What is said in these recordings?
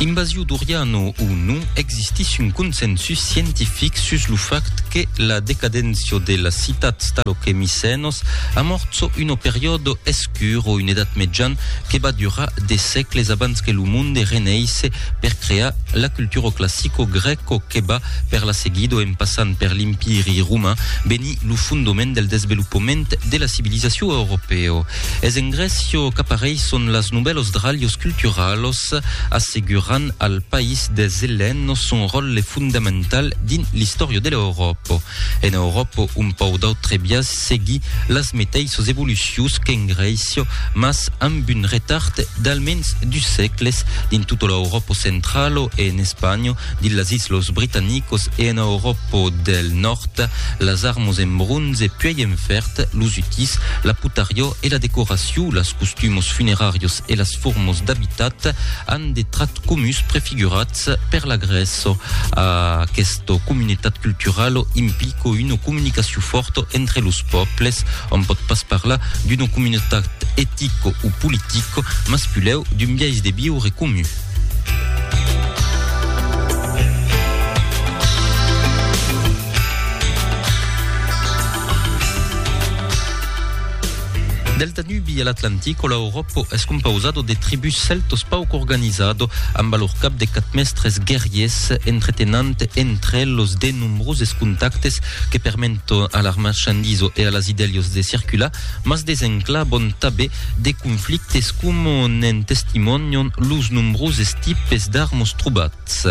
Invasiu doriano o non, existís un consensus scientific sus lo fact que la decadéncia de las citats talo que Micènos amorço una periòdo escur o un edat mejan que va durar de sècles abans que lo monde reneisse per crear la cultura classico-grèco que va per la seguido en passant per l'Empiri roman venir lo fondoment del desvelopament de la civilizacion europèo. Es en Grècio qu'apareisson las novèlos dralhos culturalos, assegurant al país des Elènos son ròtle fondamental dins l'istòria de l'Euròpo. En Euròpo, un pauc d'autre biais seguí las meteissas evolucions qu'en Grècio, mas amb un retard d'almens dus sègles. Dins tota l'Euròpo centralo e en Espanha, Dins las Islas Britanicas e ena Euròpa deth Nòrd, las armas en bronze puèi en fèrd, los utís, la potariá e la decoracion, las costumas funeràrias e las formas d'abitat an de trachs comuns prefigurats per la Grècia. Aquesta comunitat culturala implica una comunicacion fòrta entre los pòbles. Òm pòt pas parlar d'una comunitat etica o politica, mas pulèu d'un biais de viure comun. Del Danubi a l'Atlantic o l'Europa es compausado de tribus celtos pauc organizado amb a lor cap de quatre mestres guerriers entretenant entre los de nombroses contactes que permento a l'armachandiso e a las idèlios de circular mas desenclaban tabé de conflictes coma ne'n testimonian los nombroses tipes d'armos trobats.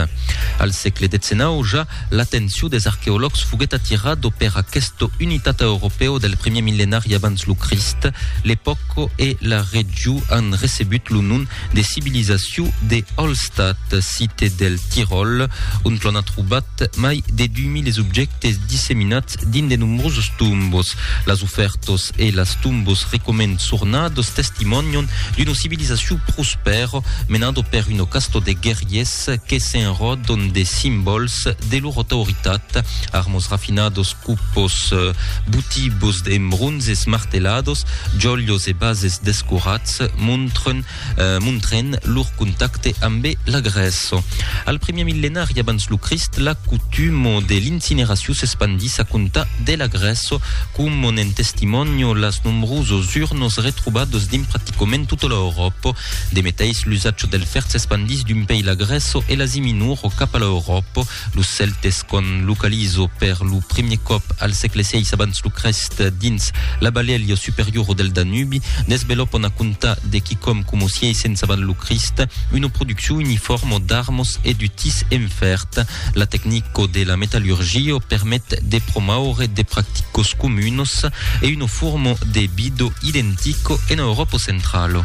Al sègle XIX ja, l'atencion des arqueològs foguèt atirado per aqueste unitat europèu del primier millenari abans lo Crist, l'epòca e la region an recebut lo nom de civilizacion de Hallstatt, cite del Tiròl, ont l'on a trobat mai de 2000 objèctes disseminats dins de nombroses tombos. Las ofèrtas e las tombos recoments sornadas testimònian d'una civilizacion prospèra menada per una casta de guerriers que s'enròdan de simbòls de lor autoritat, armas rafinadas, Cupos, butibos e mbronzes martelados, jolhos e bases descorats, montren, montren lor contacte ambe la Grèça. Al primièr millenari abans lo Crist, la cotuma de l'incineracion s'espandís a comptar de la Grèça, coma n'en testimònio las nombrosos urnos retrobados dins practicament tota l'Euròpa. De meteis, l'usatge del fèrre s'espandís d'un pei la Grèça e l'Asia Minora cap a l'Euròpa. Los Celtes qu'an localizo per lo primier còp al sègle vi abans lo Crèst dins la balèlha superiora del Danubi, desvelopon a comptar de quicòm coma 600 avant lo Crist una produccion uniforma d'armas e d'utís en fèrd. La tecnica de la metallurgia permet de promoure de practicas comunas e una forma de vida identica ena Euròpa centrala.